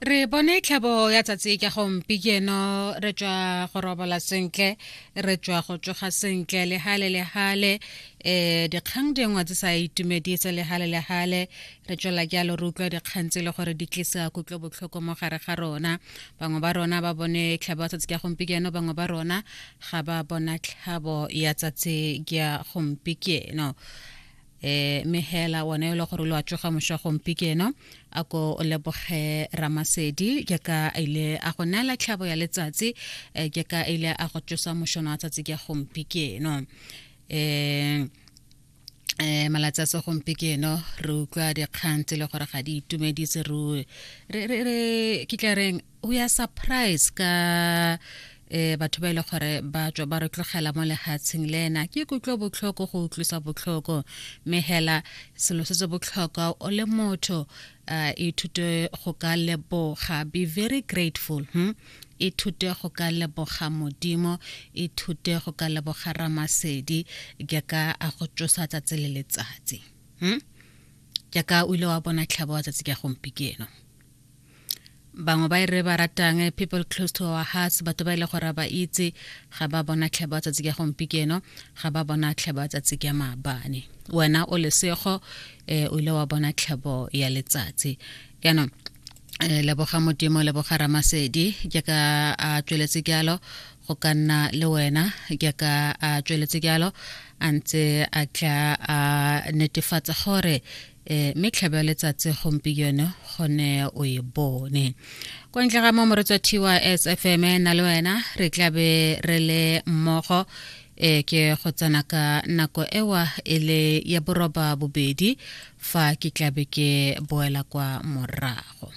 re bone tlhabo ya tsatsi ka gompi keno re tswa go robola sentle re tswa go tsoga sentle le hale le hale eh dikgang dingwe tse sa itumedise le hale le hale re tswela jalo re utlwa dikgang tse e le gore di tlisa kutlo botlhoko mo gare ga rona bangwe ba rona ba bone tlhabo ya tsatsi ka gompieno bangwe ba rona ga ba bona tlhabo ya tsatsi ka gompieno eh mehela one o le gore lo a tsoga mosha gompikeno a ko o leboge ramasedi ke ka a ile a go neela tlhabo ya letsatsi eh, ke ka a ile a go tsosa moshono wa tsatsi ke gompikeno eh eh malatsi a segompieno re utlwa dikgang tse le gore ga di itumedise re kitla reng we are surprised ka eh batho ba ile e gore ba tswa ba re tlogela mo lehatsheng le ena ke kutlwa botlhoko go utlwisa botlhoko mme hela selo se se botlhokwa o le motho uh, ithute go ka leboga be very grateful hmm? ithute go ka leboga modimo ithute go ka leboga ramasedi ke ka a go tsosa tsatsi le letsatsi hmm? ke ka o ile wa bona tlhabo wa tsatsi ka gompikeno bangwe ba e re ba ratang eh, people close to our hearts batho ba ile e gore ba itse ga ba bona tlheba tsatsi ka gompikeno ga ba bona tlheba tsatsi ka maabane wena o lesego um o ile wa bona tlhebo ya letsatsi jaanong eh, leboga modimo leboga ramasedi ke ka a tsweletse jalo go ka nna le wena ke ka a tsweletse jalo a ntse a tla a netefatsa gore e mme tlhaba letsatsi gompieno gone o e bone kwa ntle ga mo moretswa tys fm e na le wena re tlabe re le mmogo e ke go tsena ka nako ewa e le ya boroba bobedi fa ke tlabe ke boela kwa morago